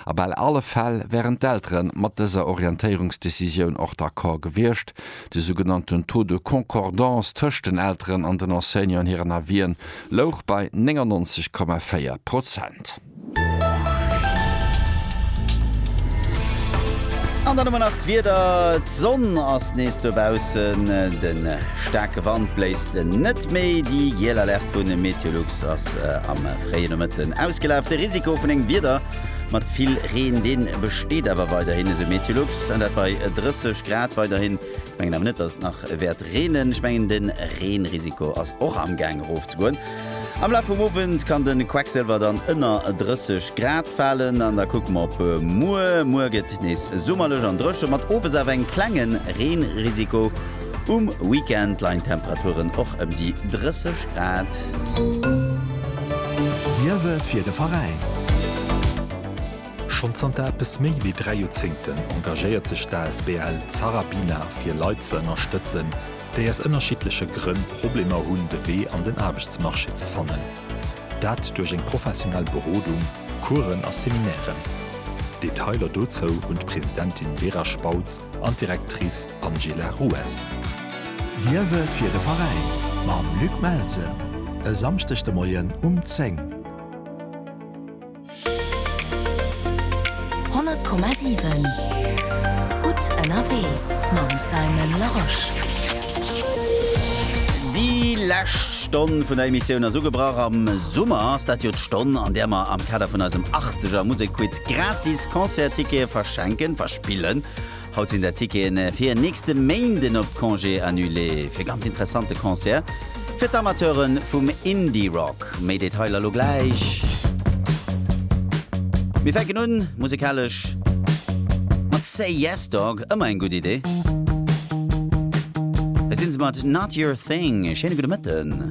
A bal alle Fäll wären d'Eltere mat dëser Orientéierungsdecisioun och d'accord gewiescht. De sougenannten Taux de concordance tëscht den Elteren an den Enseignanten hiren Avisen louch bei 99,4 Prozent. An dann hu mer nach d'Wieder. D'Sonn ass nees dobaussen, de staarke Wand bléist net méi. Déi giel Alerte vu MeteoLux ass am fréie Nomëtten ausgelaf. De Risiko vun engem Wieder Mat vill Reen, dee besteet awer weiderhin, esou Meteolux, an dat bei 30 Grad weiderhin. Ech mengen awer net, datt et nach wäert reenen. Ech mengen de Reenrisiko ass och amgaang erofzegoen. Am Laf vum Owend kann de Quecksilwer dann ënner 30 Grad falen an da kucke mer op muer. Muer gëtt nees summerlech an dréche mat owes awer engem klengen Reenrisiko. Um Weekend leien d'Temperaturen och ëm déi 30 Grad. Liewe fir de Veräin! Schonn zanter eppes méi wéi dräi Joerzéngten engagéiert sech d'asbl Zarabina fir Leit ze ënnerstëtzen, déi aus ënnerschiddleche Grënn Problemer hunn, de Wee an den Aarbechtsmarché ze fannen. Dat duerch eng professionell Berodung, Coursen a Seminairen. Detailer dozou hunn d'Presidentin Vera Spautz an d'Directrice Angela Rues. Liewe fir de Veräin mam Luc Melsen e Samschdeg de Moien um 10. 100,7 Gutt ënnerwee mam Simon Larosche. Déi lescht Stonn vun der Emissioun ass ugebrach. Am Summer ass dat jo d'Stonn, an där mer am Kader vun eisem Achtzeger Musekquiz gratis Concerttickete verschenken, verspillen Haut sinn der Ticketen fir nächste Méinden op Congé annulé fir ganz interessante Concert fir d'Amateuren vum Indie Rock. Méi Detailer lo gläich. Mir fänken un musekalesch mat Say Yes Dog, ëmmer eng gutt Idee. Hei sinn se mat Not Your Thing. Schéine gudde Mëtten.